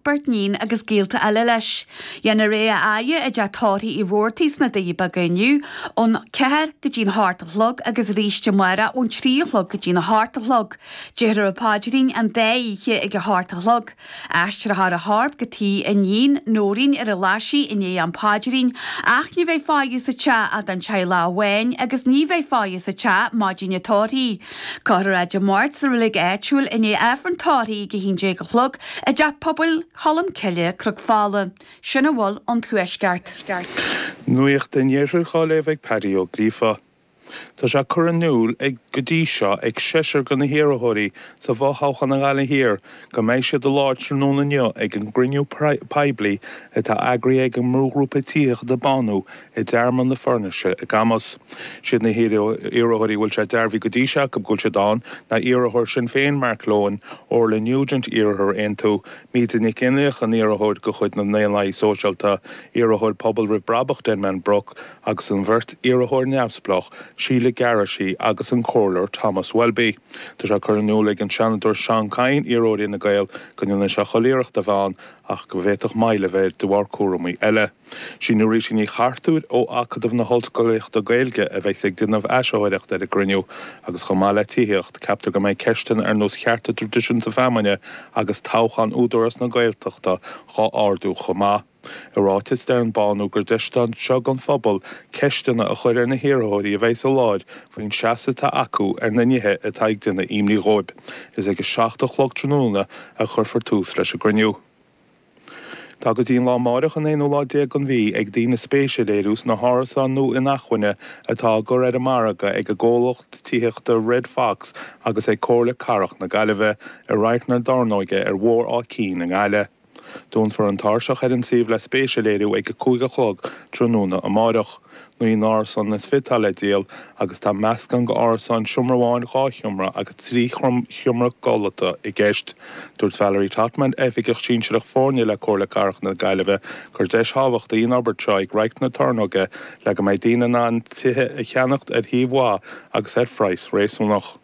beirt níon agus gaolta eile leis. Déanfar é a fhaire i dTeach Tórraimh Uí Rabhartaigh sna Doirí Beaga inniu ón ceathair go dtí an hocht a chlog agus arís amárach ón trí a chlog go dtí an hocht a chlog. Déarfar an paidrín an dá oíche ag an hocht a chlog. Aistreofar a chorp go tigh a níon, Nóirín, ar an Ghlaisigh i ndiaidh an phaidrín ach ní bheidh faire sa teach ach don teaghlach amháin agus ní bheidh faire sa teach maidin an tórraimh. Cuirfear é Dé Máirt sa reilig áitiúil i ndiaidh Aifreann an Tórraimh ag 11 a chlog i dTeach Pobail Cholm Cille, Cnoc Fola, sin a bhfuil ón Tuaisceart. Nuacht an Iarthair dhá léamh ag Pádraic Ó Gríofa Tá sé curtha in iúl ag go dtí seo ag seisear de na hiarrthóirí sa bhfo-thoghchán i nGaillimh Thiar go mbeidh siad i láthair tráthnóna inniu ag an gcruinniú poiblí atá eagraithe ag an mbrúghrúpa Tithíochta Bánú i dTearmann na Foirnise i gCamus. Siad na hiarrthóirí a bhfuil sé dearbhaithe go dtí seo acu go bhfuil siad ann ná iarrthóir Shinn Féin Mark Lohan, Orla Nugent, iarrthóir Aontú, Míde Nic Fhionnlaoich, an iarrthóir de chuid na nDaonlathaí Sóisialta, iarrthóir Pobal Roimh Brabach Denman Rooke agus an bheirt iarrthóir neamhspleách Sheila Garrity agus an Comhairleoir Thomas Welby. Tá sé curtha in iúl ag an Seanadóir Seán Kyne, iarrthóir Fhine Gael, go ndéanfaidh sé chuile iarracht a bheith ann ach go bhféadfadh moill a bheith air de bharr cúramaí eile. Is í Norita Ní Chartúir ó Acadamh na hOllscolaíochta Gaeilge a bheas ag déanamh áisitheoireacht ar an gcruinniú agus chomh maith le tithíocht, ceaptar go mbeidh ceisteanna ar nós chearta traidisiúnta feamainne agus toghchán Údarás na Gaeltachta dhá ardú chomh maith. I ráiteas deir an Bánú gur deis atá anseo don phobal ceisteanna a chur ar na hiarrthóirí a bheas sa láthair faoin seasamh atá acu ar na nithe atá ag déanamh imní dhóibh. Is ag a seacht a chlog tráthnóna a chuirfear tús leis an gcruinniú. Tá go dtí an lá amáireach, an aonú lá déag den mhí, ag daoine spéis a léiriú sna hárasáin nua inacmhainne atá á gcur ar an margadh ag an gcomhlacht tithíochta Red Fox agus ag Comhairle Cathrach na Gaillimhe i Radharc na Tornóige ar Bhóthar Áth Cinn i nGaillimh. Dúnfar an tairseach ar an suíomh le spéis a léiriú ag a cúig a chlog tráthnóna amáireach. Naoi n-árasán is fiche atá le díol agus tá meascán d'árasáin, seomra amháin, dhá sheomra agus trí sheomra codlata i gceist. Dúirt Valerie Trotman, Oifigeach Sinsearach Foirne le Comhairle Cathrach na Gaillimhe, gur deis thábhachtach í an fhorbairt seo ag Radharc na Tornóige le go mbeidh daoine in ann tithe a cheannacht ar shuíomh mhaith agus ar phraghas réasúnach.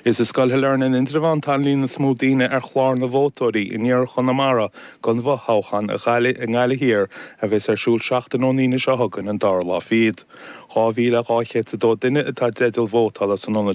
Is i Scoil Shailearna in Indreabhán atá an líon is mó daoine ar chlár na vótóirí in iarthar Chonamara don bhfothoghchán i nGaillimh Thiar a bheas ar siúl seachtain ón Aoine seo chugainn, an dara lá fichead. 2,202 duine atá i dteideal vótála san ionad seo.